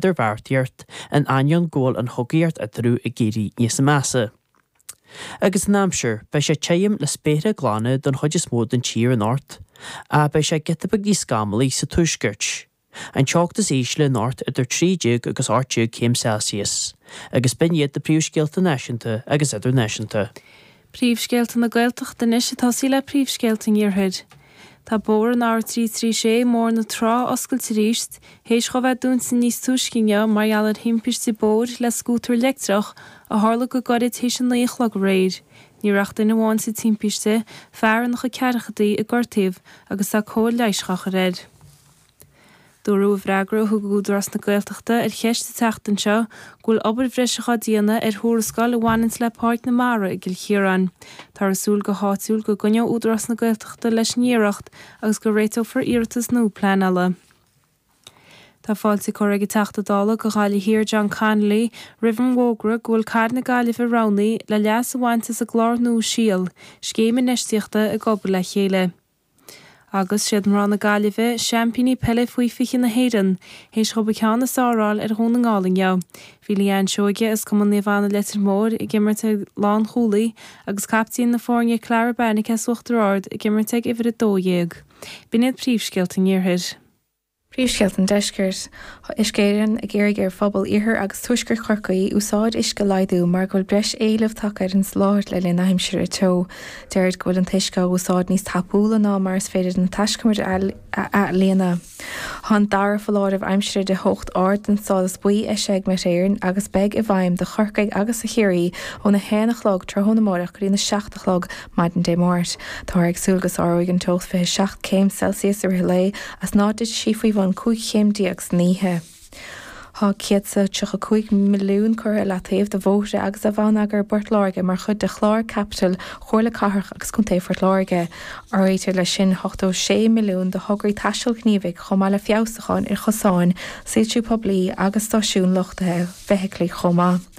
d'idirbheartaí ort, in ainneoin go bhfuil an chogaíocht eatarthu ag éirí níos measa. Agus an aimsir, beidh sé te tirim le spéartha glana don chuid is mó den tír anocht, ach beidh sé giota beag níos scamallaí sa tuaisceart. An teocht is ísle anocht idir 13 agus 18 céim Celsius, agus b'in iad na príomhscéalta náisiúnta agus idirnáisiúnta. Príomhscéalta na Gaeltachta anois ag tosaí le príomhscéalta an Iarthair. Tá bóthar an R336 Bóthar na Trá oscailte aríst théis dhó bheith dúnta níos túisce inniu mar gheall ar thimpiste bóthair le scútar leictreach a tharla go gairid théis a naoi a chlog aréir. Ní raibh ach duine amháin bainteach sa timpiste, fear in a chuid ceathrachadaí, gortaíodh é agus tá cóir leighis dhá chur air. Dúradh i bhfreagra a thug Údarás na Gaeltachta ar cheist an tseachtain seo go bhfuil obair bhreise dhá déanamh ar thuarascáil a bhaineanns le Páirc na Mara i gCill Chiaráin. Táthar ag súil go háitiúil go gcoinneoidh Údarás na Gaeltachta leis an iarracht agus go réiteofar iarratas nua pleanála. Tá fáilte curtha ag an Teachta Dála do Ghaillimh Thiar John Connolly roimh an bhfógra go bhfuil cathair na Gaillimhe roghnaithe le leas a bhaint as an gclár nua síol, scéim infheistíochta ag obair le chéile. Agus 'siad mná na Gaillimhe seaimpíní peile faoi 20 na hÉireann théis dhóibh an ceann is fearr a fháil ar Dhún na nGall inniu, bhí Leanne Seoige as Cumann Naomh Anna Leitir Móir ag imirt ag lánchúlaí agus captaen na foirne Clara Beirnicé as Uachtar Ard ag imirt ag uimhir 12. B'in iad príomhscéalta an iarthair. Príomhscéalta an Deiscirt, tá Uisce Éireann ag iarraidh ar phobal Iarthar agus Tuaisceart Chorcaí úsáid uisce a laghdú mar go bhfuil breis éileamh tagtha ar an soláthar le linn na haimsire teo. Deirtear go bhfuil an t-uisce á úsáid níos tapúla ná mar is féidir na taiscumair a athlíonadh. Tá an dara foláireamh aimsire de theocht ard den stádas buí eisithe ag Met Éireann agus beidh sé i bhfeidhm do Chorcaigh agus do Chiarraí óna 1 a chlog tráthnóna amárach go dtína 7 a chlog Maidin Dé Máirt. Táthar ag súil go sáróidh an teocht 27 céim Celsius i rith an lae is ná dtitfidh sí faoi bhun 15 chéim san oíche. Tá 135 milliún curtha i leataobh do bhóithre agus do bhonneagar i bPort Láirge mar chuid de chlár caipitil Chomhairle Cathrach agus Contae Phort Láirge. Áirítear leis sin 86 milliún do thograí taistil ghníomhaigh chomh maith le feabhsúcháin ar chosáin, soilsiú poiblí agus stáisiúin luchtaithe feithiclí chomh maith.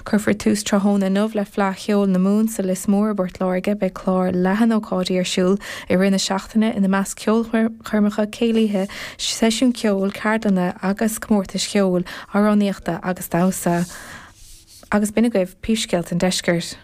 Cuirfear tús tráthnóna inniu le Fleadh Cheoil na Mumhan sa Lios Mór i bPort Láirge. Beidh clár leathan ócáidí ar siúl i rith na seachtaine, ina measc ceolchoirmeacha, céilíthe, seisiúin ceoil, ceardlanna agus comórtais cheoil, amhránaíochta agus damhsa. Agus b'in agaibh príomhscéalta an Deiscirt.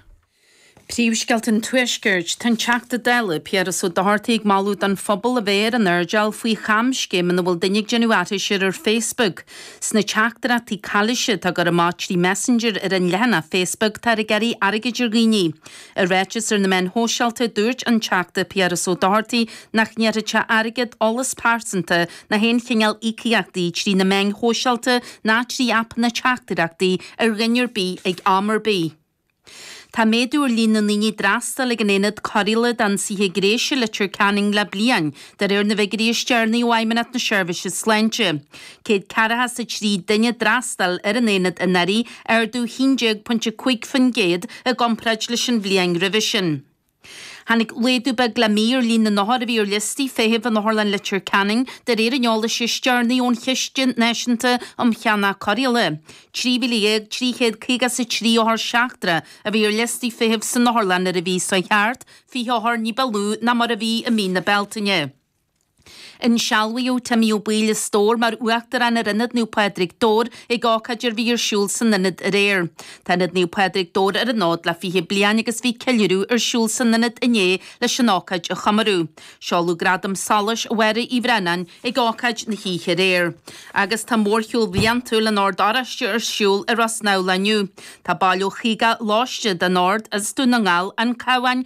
Príomhscéalta an Tuaiscirt. Tá an Teachta Dála, Piaras Ó Dochartaigh ag moladh don phobal a bheith ar an airdeall faoi chamscéim ina bhfuil duine ag déanamh aithris air ar Facebook. Sna teachtaireachtaí calaoise atá á gcur amach trí Messenger ar an leathanach Facebook táthar ag iarraidh airgid ar dhaoine. I ráiteas ar na meáin shóisialta dúirt an Teachta Piaras Ó Dochartaigh nach n-iarrfadh sé airgead, eolas pearsanta ná haon chineál íocaíochtaí trí na meáin shóisialta ná trí aipeanna teachtaireachtaí ar dhuine ar bith ag am ar bith. Tá méadú ar líon na ndaoine a d'fhreastail ag an Aonad Cóireála d'Ionsaithe Gnéis i Leitir Ceanainn le bliain, de réir na bhfiguirí is deireanaí ó Fheidhmeannacht na Seirbhíse Sláinte. Céad ceathracha is a trí duine a d'fhreastail ar an Aonad anuraidh, ardú 11.5% i gcomparáid leis an bhliain roimhe sin. Tháinig laghdú beag le mí ar líon na n-othar a bhí ar liostaí feithimh in Otharlann Leitir Ceanainn de réir an eolais is deireanaí ón Chiste Náisiúnta um Cheannach Cóireála. 13,353 othar seachtracha a bhí ar liostaí feithimh san otharlann ar an mhí seo thart, 20 othar ní ba lú ná mar a bhí i mí na Bealtaine. Insealbhaíodh Timmy Ó Baoill an Stóir mar Uachtarán ar Ionad Naomh Pádraig, Dobhar, ag ócáid a bhí ar siúl san Ionad aréir. Tá Ionad Naomh Pádraig, Dobhar ar an fhód le fiche bliain agus bhí ceiliúradh ar siúl san Ionad inné leis an ócáid a chomóradh. Seoladh Gradam Solais Mháire Uí Bhraonáin ag ócáid na hoíche aréir. Agus tá mórshiúl bhliantúil an Ord Oráiste ar siúl i Ros Neamhlach inniu. Tá baill ó chaoga lóiste den Ord as Dún na nGall, An Cabhán,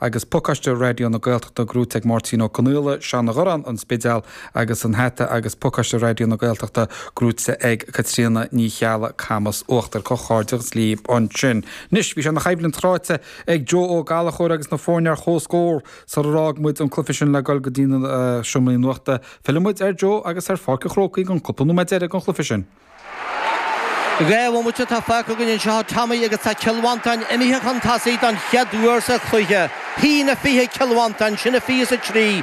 Agus pacáiste Raidió na Gaeltachta gnóite ag Máirtín Ó Conaola, Seanadh Gharráin, An Spidéal agus an hata agus pacáiste Raidió na Gaeltachta gnóite ag Caitríona Ní Cheallaigh, Camas Uachtair, comhghairdeachas libh ansin. Anois, bhí sé ina choimhlint chráite ag Joe Ó Gallchóir agus na foirne ar comhscór sarar fhág muid an cluiche sin le goil go dtí na seomraí nuachta. Fillfidh muid ar Joe agus ar Pháirc an Chrócaigh an cúpla nóiméad deiridh den chluiche sin. Dhá bhomaite atá fágtha againn anseo do Tommy agus tá Cill Mhantáin imithe chun tosaigh don chéad uair sa chluiche. A haon a fiche Cill Mhantáin, sin a fiche is a trí.